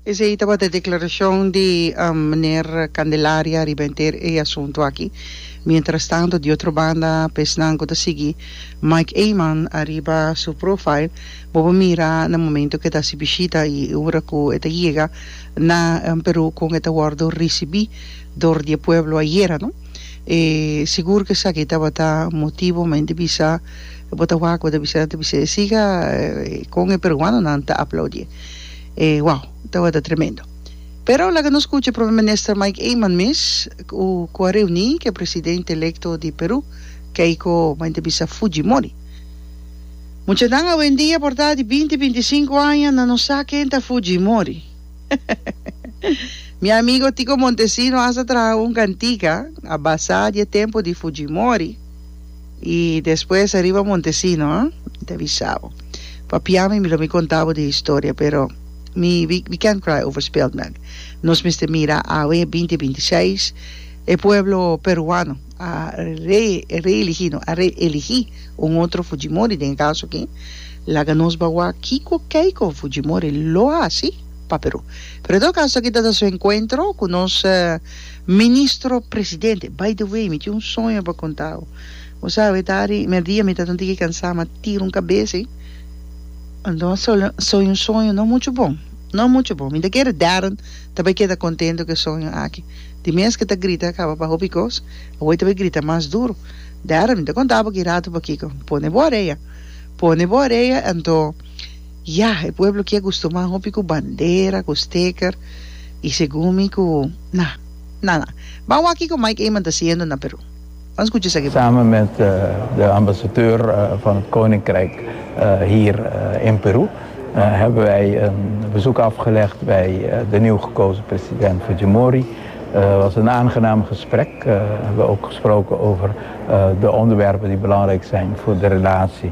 Esei tabata e declaracion di Miner Candelaria riba henter e asunto aki. Mientrastanto di otro banda pa esnan cu ta sigui Mike Eman ariba su profile bo por mira na momento cu e ta haci bishita y e ura cu e ta yega na Peru con e ta wordo ricibi dor di e pueblo ayera no e sigur cu esaki tabata motibo men ta bisa bo ta wak bo ta bisa nan ta bisa e siga con e peruanonan ta aplaudi. e wow tabata tremendo pero laga nos cucha Prome Minister Mike Eman mes cu cu a reuni cu e Presidente Electo di Peru Keiko ma e ta bisa Fujimori muchanan awendia por ta di binti binti sinku aña nan no sa ken ta Fujimori mi amigo Tico Montesino hasta traha un cantica a basa di e tempo di Fujimori. I despues ariba Montesino, ha? Mi ta bisa bo. Papia mi, mi lo mi konta bo di historia, pero mi, we, we can't cry over spilt milk. Nos mester mira awe binti binti i seis, e pueblo peruano a re, reeligi, no, a reeligi un otro Fujimori den e kaso aki. Laga nos bawa kiko, keiko Fujimori lo hasi pa Perú. Pero en todo kaso, taki ta ta su enkuentro ku nos. Ministro Presidente, by the way, mi tin un soño pa contau. Bo sa awet ari merdia mi ta ta un tiki cansa ma tira un cabeza ahi. Anto soña un soño no mucho bon, no mucho bon. Mi ta kere Darren ta bay keda contento cu e soño aki. Di mes cu ta grita caba pa hopi cos, awey ta bay grita mas duro. Darren, mi ta conta bo ki rato pakico. Pone bo orea, pone bo orea anto. Ya, e pueblo ki a gustuman hopi ku bandera, ku steker, i segun mi ku, na, na, na. Ban wak kiko Mike Eman ta siendo na Peru. Ban skucha esaki bo. Samen met de ambasadeur van het Koninkrijk hier in Peru hebben wij een bezoek afgelegd bij de nieuw gekozen president Fujimori. Het was een aangenaam gesprek. We hebben ook gesproken over de onderwerpen die belangrijk zijn voor de relatie